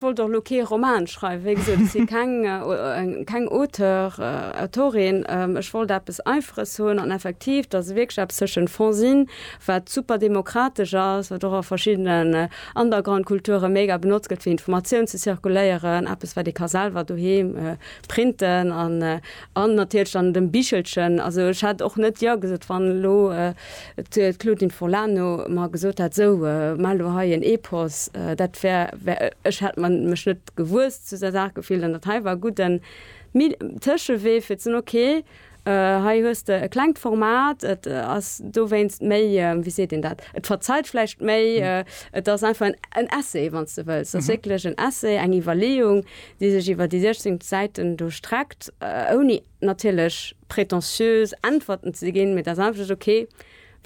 wollt och lo kee Roman schreiwen, wéi gesot, ech si keng, keng Auteur, Autorin, ech wollt eppes Einfaches hunn an effektiv, dass e wierklech eppes tëschent Fanzine, wat super demokratesch ass, wat och a verschiddenen Undergroundkulture mega benotzt gëtt, fir Informatioun ze zirkuléieren, eppes, wat ee ka selwer doheem printen an An natierlech dann dem Bichelchen. Also ech hätt och net jo gesot, wann elo d'Claudine Forlano mer gesot hätt, sou maa elo hei en Epos. Dat wär, ech hätt mech net gewuess zu där Saach gefillt. An dat hei war e gudden Tëschewee fir ze soen, ok, hei hues de e klengt Format, et ass dowéinst méi, wéi seet een dat, et verzeiht vläicht méi, et ass einfach en Essai, wann s de wëlls. Et ass wierklech en Essai, eng Iwwerleeung, déi sech iwwer déi 16 Säiten do streckt, ouni natierlech pretentiös Äntwerten ze ginn, mee et ass einfach just ok,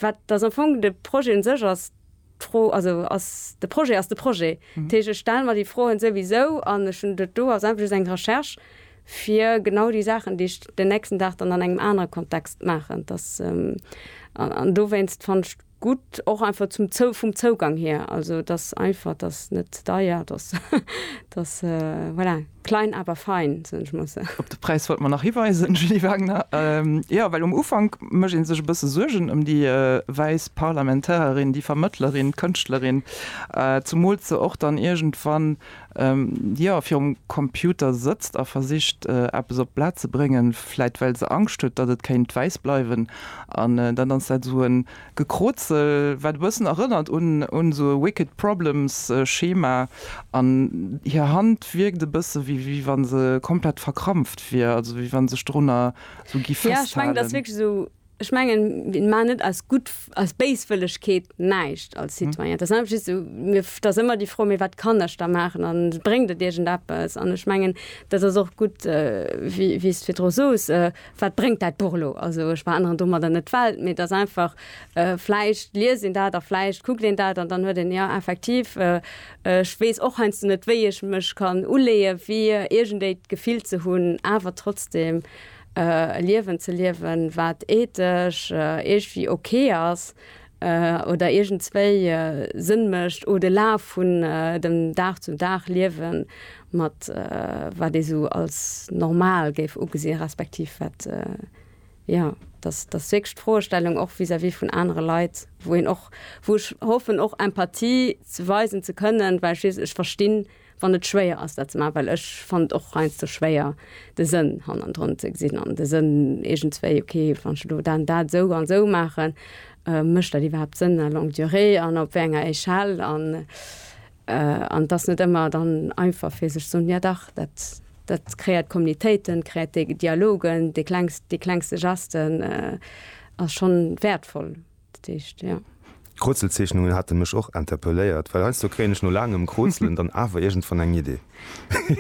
wat dass am Fong de Projet u sech ass d'Fro, also ass de Projet ass de Projet. Dat heescht, ech stelle mer déi Froen souwisou an ech hunn dat do ass einfach just eng Recherche fir genau déi Saachen, déi ech den nächsten Dag dann an engem anere Kontext maachen, dass an dowéinst fannt ech. gutt och einfach zum zou vum Zougang hier also dass einfach dass net ze deier dass dass voilà klein awer fein soen ech muss. Op de Präis wollt mer nach hiweisen Julie Wagner jo well um Ufank mécht ee sech e bësse Suergen ëm déi wäiss Parlamentarerin, déi Vermëttlerin, d'Kënschtlerin, zumools se och dann iergendwann jo virum Computer sëtzt a versicht eppes op d'Blat ze bréngen, vläit well se Angscht huet, datt et kéint wäiss bleiwen. An dann ass dat esou e Gekroozel, wat e bëssen erënnert un esou e Wicked Problems Schema. An hir Hand wierkt e bësse wéi wa se komplett verkrampft wier, also wéi wa sech dorunner esou gi festhalen. Ech mengen, mir maachen net aus gutt, aus Béiswëllegkeet näischt als Citoyen. Et ass einfach just esou, mir, da ass ëmmer déi Fro, mee wat kann ech da maachen an bréngt et iergendeppes? An ech mengen, dat ass och gutt, wéi, wéi s de virdru soos, wat bréngt dat Buch elo? Also ech veränneren domadder net d'Welt, mee et ass einfach, vläicht liest een dat a vläicht kuckt een dat an dann huet een, jo effektiv, ech weess och heiansdo net, wéi ech mech kann uleeën, fir iergendéi d'Gefill ze hunn, awer trotzdeem E Liewen ze liewen, wat ethesch iergwéi ok ass oder iergendswéi Sënn mécht, o de Laf vun dem Dag zum Dag liewen mat wat ee sou als normal géif ugesinn, respektiv wat, jo, dass dass wierklech d'Froestellung och vis-à-vis vun anere Leit, wou een och, wou ech hoffen och Empathie ze weisen ze kënnen, well schliisslech ech verstinn, wann et schwéier ass dat ze maachen, well ech fannen et och heiansdo schwéier de Sënn hannendrun ze gesinn an de Sënn iergendswéi, ok wann ech elo dann dat esou an esou maachen, mécht dat iwwerhaapt Sënn à longue durée an op wéi enger Échelle an et ass net ëmmer dann einfach fir sech ze soen, jo dach dat dat kreéiert Communitéiten, kreéiert dee Dialogen, dee klengste Geste ass schonn wäertvoll. D'Kroozelzeechnungen hate mech och interpelléiert, well heiansdo kréien ech no laangem Krootzelen dann awer iergendwann eng Idee.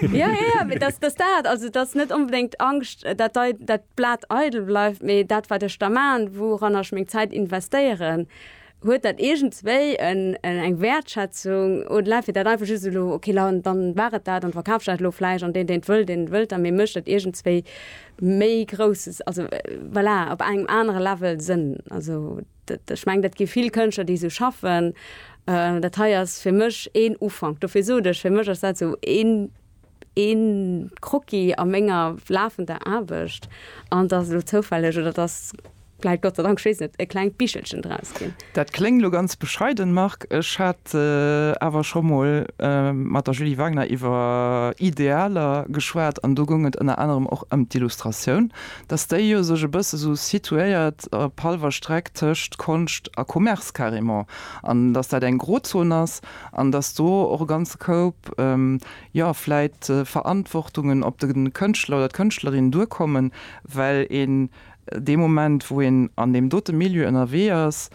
Jo, jo, mee dass dass dat, also et ass net onbedéngt Angscht, dat dei dat Blat eidel bleift, mee dat, wat ech da maachen, wouranner ech meng Zäit investéieren, huet dat iergendswéi en eng Wäertschätzung oder läift fir dat einfach just elo, okay, dann war et dat an verkaf ech dat elo vläicht an deen, deen et wëll, deen et wëllt, mee mech dat iergendswéi méi grousses, also voilà, op engem anere Level sinn. Also dat, ech meng, dat gi vill Kënschtler, déi esou schaffen. Dat hei ass fir mech een Ufank. Dofir sot ech, fir mech ass dat esou een, een Croquis a menger lafender Aarbecht. An et ass elo zoufälleg, oder et ass, Vläit, Gott sei Dank, ech weess net, e klengt Bichelchen draus ginn. Dat kléngt elo ganz bescheiden, Marc. Ech hat awer scho mol mat der Julie Wagner iwwer Idealer geschwat an do goung et ënner anerem och ëm d'Illustratioun, dass déi jo sech e bësse sou situéiert op hallwer Streck tëscht Konscht a Commerce carrément an dass dat eng Grozon ass an dass do och e ganze Koup, jo, vläit Verantwortungen op de Kënschtler oder d'Kënschtlerin duerkommen, well een dee Moment, wou een an deem dote Milieu ënnerwee ass,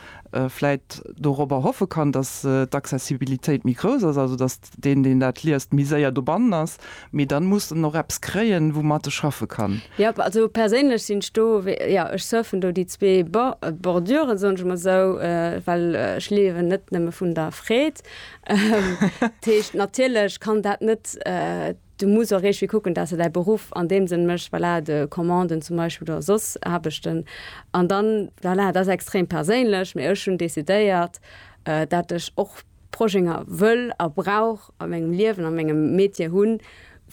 vläit dorobber hoffe kann, datt d'Accessibilitéit méi grouss ass, also datt deen, deen dat liest, méi séier dobannen ass. Mee dann muss en och eppes kréien, woumat e schaffe kann. Jop, also perséinlech sinn ech do, jo, ech surfen do déi zwee Borduren, soen ech emol esou, well ech liewen net nëmme vun der Freed. Dat heescht, natierlech kann dat net. Du muss och iergdwi kucken dat s de däi Beruff an deem Sënn méchs, voilà, de Commanden zum Beispill oder soss Aarbechten. An dann, voilà, dat ass extrem perséinlech, mee ech hunn decidéiert, dat ech och Projénger wëll a brauch a mengem Liewen, a mengem Metier hunn,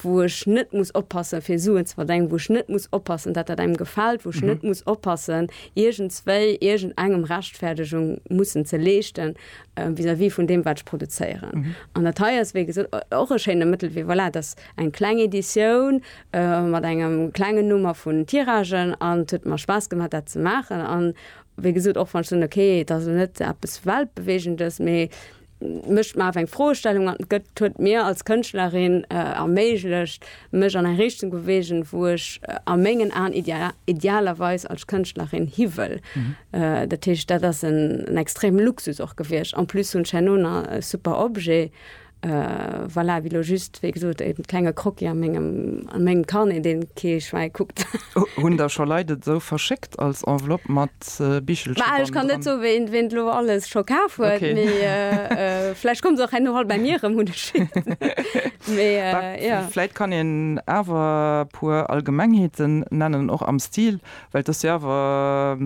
wou ech net muss oppassen fir Suen ze verdengen, wou ech net muss oppassen dat dat engem gefält, wou ech net muss oppassen iergendswéi iergendengem Rechtfäerdegung mussen ze leeschten. vis-à-vis vun deem, wat ech produzéieren. An dat hei ass, wéi gesot, och e schéine Mëttelwee. Voilà, et ass eng kleng Editioun mat engem klengen Nummer vun Tiragen an et huet mer Spaass gemaach, dat ze maachen. An wéi gesot, och wann ech soen, okay, et ass elo net eppes Weltbeweegendes, mee mécht mer awer eng Froestellung an et gëtt, huet mir als Kënschtlerin erméiglecht, mech an eng Richtung bewegen, wou ech a mengen Aen idealerweis als Kënschtlerin hi wëll. Dat heescht, dat ass en extremen Luxus och gewiescht. En plus hunn ech herno nach e super Objet, voilà, wéi elo just, wéi gesot, e klenge Croquis a mengem Carnet, dee kee Schwäi kuckt. Hunn der scho Leit et esou verschéckt als Enveloppe mat? Ech kann net soe wéint lo alles scho kaf huet vläicht kommt se och herno all bei mir rëm hunn ech vläicht kann een awer puer Allgemengheeten nennen och am Stil well et ass jo awer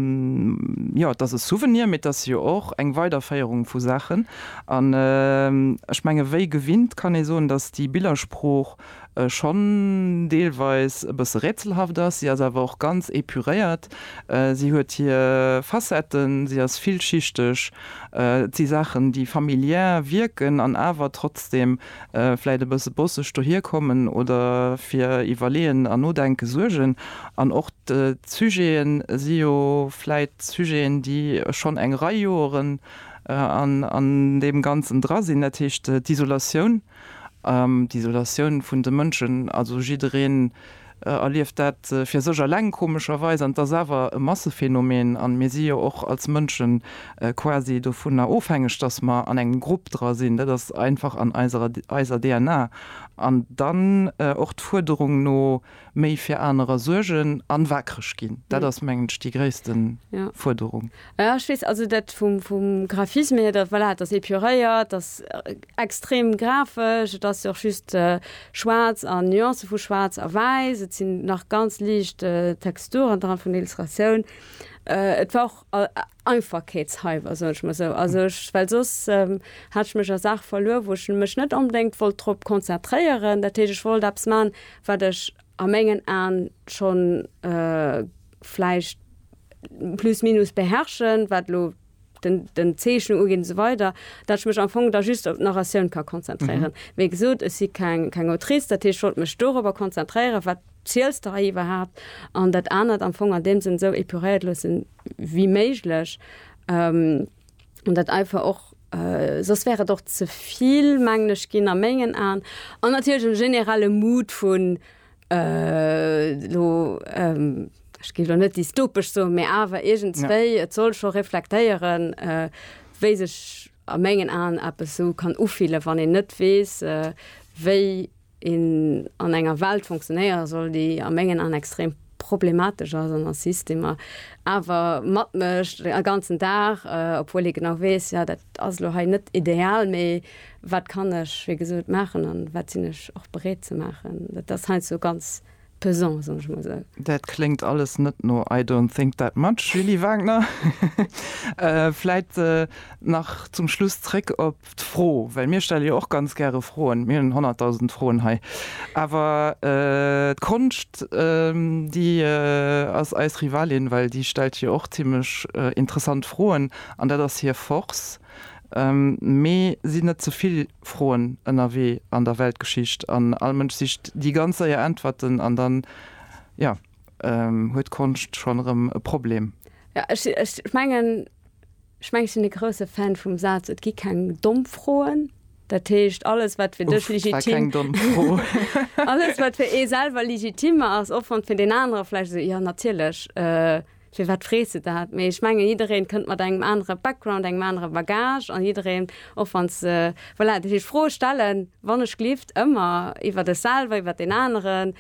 jo et ass e Souvenir mee et ass jo och eng Weiderféierung vu Saachen an ech menge wéi gewinnt kann ee soen datt déi Billersprooch schonn deelweis e bësse rätselhaft ass. Si ass awer och ganz épuréiert. Si huet hir Facetten, si ass villschichteg. Et si Saachen, déi familiär wierken an awer trotzdem vläicht e bësse bosseg dohier kommen oder fir Iwwerleeën an Nodenke suergen. An och d'Sujete si jo vläicht Sujeten, déi schonn eng Rei Joeren an deem Ganzen dra sinn, dat heescht d'Isolatioun. D'Isolatioun vun de Mënschen, also jiddereen erlieft dat fir sech eleng komescherweis, an et ass awer e Massephänomen an mir si jo och als Mënsche quasi dovunner ofhängeg, dass mer an engem Grupp dra sinn. Dat ass einfach an eiser DNA. An dann och d'Fuerderung no. méi fir anerer suergen an waakreg ginn. Dat ass mengen ech déi gréissten Fuerderung. Jo ech weess, also dat vum vum Graphisme hier, dat voilà, et ass épuréiert, et ass extrem grafesch, et ass jo och just schwaarz an Nuancen vu schwaarz a wäiss, et sinn nach ganz liicht Texturen dran vun Illustratioun. Et war och Einfachkeetshalber, soen ech mol esou. Also ech, well soss hat ech mech a Saache verluer, wou ech mech net onbedéngt wollt drop konzentréieren. Dat heescht, ech wollt eppes maachen, wat ech a mengen Aen schonn vläicht plus minus beherrschen, wat elo den, den Zeechnen ugeet esou weider, dat ech mech am Fong da just op d'Narratioun ka konzentréieren. Wéi gesot, ech si keng, keng Autrice, dat heescht, ech wollt mech dorobber konzentréieren, wat ziels de hei iwwerhaapt, an dat anert am Fong an deem Sënn esou épuréiert loossen, wéi méiglech, an dat einfach och, soss wär et och ze vill, mengen ech, ginn a mengen Aen, an natierlech e generelle Mood vun elo, ech géif elo net dystopesch soen, mä awer iergendswéi, et soll scho reflektéieren, wéi sech. a mengen Aen eppes esou kann ufillen, wann een net weess, wéi een an enger Welt funktionéiere soll, déi a mengen Aen extrem problematesch ass an a Systemer awer matmécht e ganzen Dag, obwuel ee genau weess, jo, dat ass elo hei net ideal, mee wat kann ech, wéi gesot, maachen an wat sinn ech och bereet ze maachen. Dat ass heiansdo ganz pesant, soen ech emol esou. Dat kléngt alles net no I don't think that much, Julie Wagner. Vläit nach zum Schluss zréck op d'Fro, well mir stelle jo och ganz gäre Froen, mir hunn honnertdausend Froen hei, awer d'Konscht, déi ass eis Rivalin, well déi stellt jo och zimmlech interessant Froen an dat ass hir Force. Mee sinn net ze vill Froen ënnerwee an der Weltgeschicht an all Mënsch sicht déi ganz séier Äntwerten an dann, jo, huet d'Konscht schonn erëm e Problem. Jo, ech sinn, ech mengen, ech mengen, ech sinn e grousse Fan vum Saz, Et gi keng domm Froen. Dat heescht, alles, wat fir dech legitim, uff, dat war keng domm Fro, alles, wat fir ee selwer legitim ass, och wann et fir deen anere vläicht esou, jo, natierlech, Firwat frees de dat? Mee ech mengen, jiddereen kënnt mat engem anere Background, engem anere Bagage an jiddereen, och wann se, voilà, dat heescht, Froe stellen, wann ech glift, ëmmer iwwert ech selwer, iwwert deen aneren,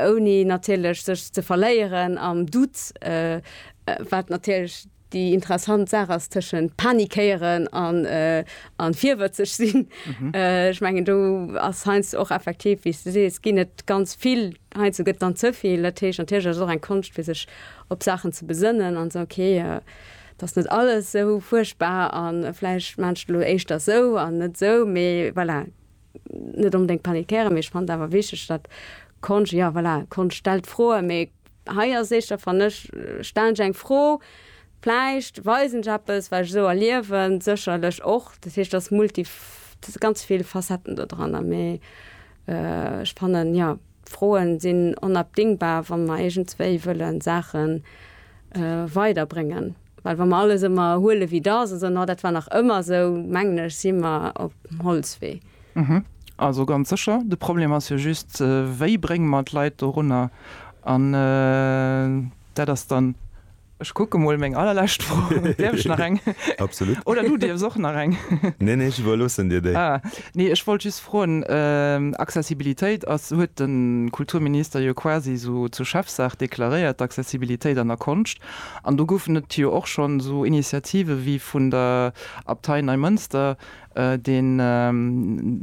ouni natierlech sech ze verléieren am Doute, wat natierlech déi interessant Saach ass tëschent panikéieren an virwëtzeg sinn. Ech mengen, do ass heiansdo och effektiv, wéi s de sees, ginn et ganz vill Heiansdo gëtt et dann ze vill. Dat heescht, natierlech ass et och eng Konscht, fir sech op Saachen ze besënnen an ze soen, okay, et ass net alles esou fuerchtbar a vläicht maachen ech et elo éischter esou an net esou. Mee voilà, net onbedéngt panikéieren. Mee ech fannen et awer wichteg, datt Konscht, jo voilà, Konscht stellt Froen. Mee hei ass et éischter, fannen ech, stellen ech eng Fro, vläicht weisen ech eppes, wat ech esou erliewen, sécherlech och. Dat heescht, et ass multi, et si ganz vill Facetten dodranner. Mee. Ech fannen, jo, Froen sinn onabdingbar, wann mer iergendswéi wëllen Saachen weider bréngen. Well wann mer alles ëmmer huelen wéi et ass an soen, oh dat war nach ëmmer esou, mengen ech sinn mer op dem Holzwee. Also ganz sécher. De Problem ass jo just, wéi brénge mer d'Leit dorunner? An dat ass dann Ech kucke mol meng allerlescht Fro. Däerf ech nach eng? Absolut. Oder du dierfs och nach eng. Nee, nee, ech iwwerloossen dir déi. Ah, nee, ech wollt just froen, Accessibilitéit ass, huet de Kulturminister jo quasi esou zur Chefsaach deklaréiert, d'Accessibilitéit an der Konscht. An do goufen et jo och schonn esou Initiative wéi vun der Abtei Neimënster, deen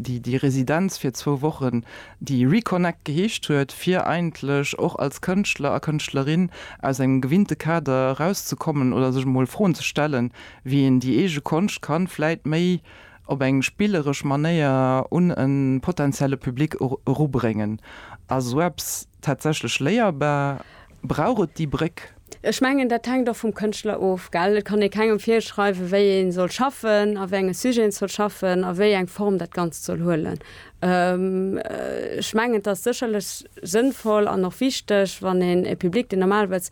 déi Residenz fir zwou Wochen, déi Reconnect geheescht huet, fir eigentlech och als Kënschtler a Kënschtlerin aus engem gewinnte Kader erauszekommen oder sech emol Froen ze stellen, wéi een déi eege Konscht kann vläit méi op eng spilleresch Manéier un e potentielle Public erubréngen. Ass esou eppes tatsächlech léierbar? brauch et déi Bréck. Ech mengen, dat hänkt och vum Kënschtler of, gell? Et kann ee kengem virschreiwen, wéi ee soll schaffen, a wéi enge Sujeten et soll schaffen a wéi eng Form dat Ganzt soll huelen. Ech mengen, et ass sécherlech sënnvoll an och wichteg, wann een e Public, deen normalerweis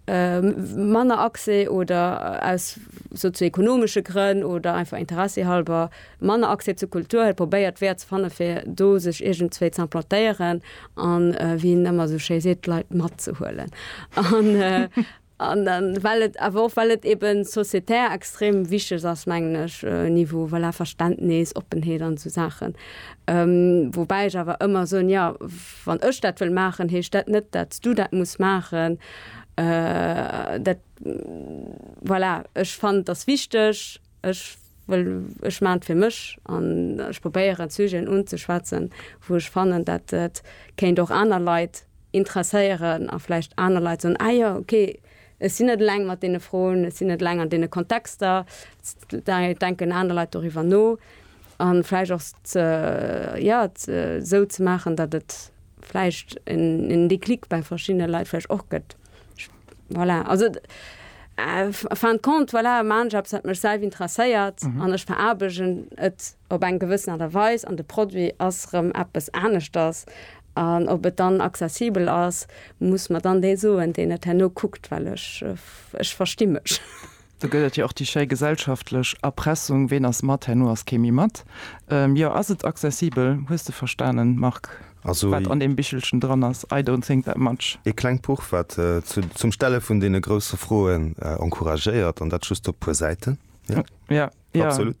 manner Accès oder aus sozio-ekonomesche Grënn oder einfach interessehalber Manner Accès zu Kultur, hie probéiert Weeër ze fannen, fir do sech iergendzwéi z'implantéieren an, wéi en ëmmer esou schéi seet, d'Leit matzehuelen. An well et awer och, well et eben sociétaire extrem wichteg ass, mengen ech, Niveau, voilà, Verständnis, Oppenheet an esou Saachen. Woubäi ech awer ëmmer soen, jo, wann ech dat wëll maachen, heescht dat net, dat s du dat muss maachen. Dat, voilà, ech fannen et ass wichteg. Ech wëll, ech maachen et fir mech an ech probéieren d'Sujeten unzeschwätzen, wou ech fannen, dat et kéint och aner Leit interesséieren a vläicht aner Leit soen, ah jo, ok, ech sinn net eleng mat deene Froen, ech sinn net eleng an deene Kontexter, da denken aner Leit doriwwer no. A vläicht och ze, jo, ze, esou ze maachen, datt et vläicht en Déclic bei verschiddene Leit vläicht och gëtt. Voilà, also en fin de compte, voilà, man ech eppes, wat mech selwer interesséiert an ech veraarbegen et op eng gewëssen Aart a Weis an de Produit ass erëm eppes aneschters. An ob et dann accessibel ass, muss mer dann dee soen, deen et herno kuckt, well ech, ech versti mech. Do gëtt et jo och déi schéi gesellschaftlech Erpressung, Ween ass mat, herno ass kee méi mat. Jo, ass et accessibel? Hues de verstanen, Marc, wat an deem Bichelchen dran ass? I don't think that much. Ee klengt Buch, wat zum Stelle vun deene grousse Froen encouragéiert, an dat just op puer Säiten. Jo, jo, absolut.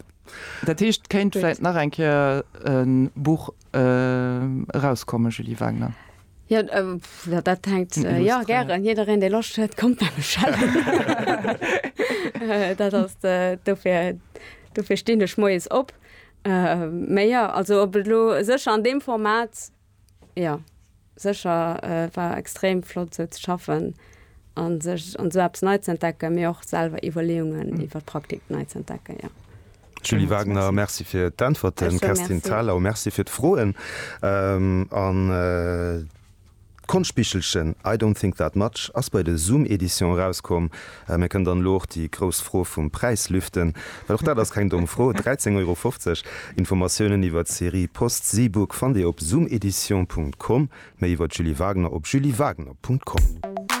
Dat heescht, kéint vläit nach eng Kéier e Buch. erauskommen, Julie Wagner? Jo, dat hänkt, jo, gären, jiddereen, dee Loscht huet, kommt bei mech hëllefen. Dat ass, dofir, dofir stinn ech moies op. Mä jo, also, ob et elo sécher an deem Format, jo. Sécher war extrem flott esou ze schaffen a sech an esou eppes nei ze entdecken, mee och selwer Iwwerleeungen iwwer d'Praktik nei ze entdecken, jo. Julie Wagner, Merci fir d'Äntwerten. Kerstin Thalau, Merci fir d'Froen an d'Konschtbichelchen I don't think that much ass bei de Zoom Edition erauskomm. Mir kënn dann elo och déi grouss Fro vum Präis lüften, well och dat ass keng domm Fro, 13 Euro 50. Informatiounen iwwer d'Serie Post Seebook fannt Dir op zoomedition Punkt com, méi iwwer d'Julie Wagner op juliewagner Punkt com.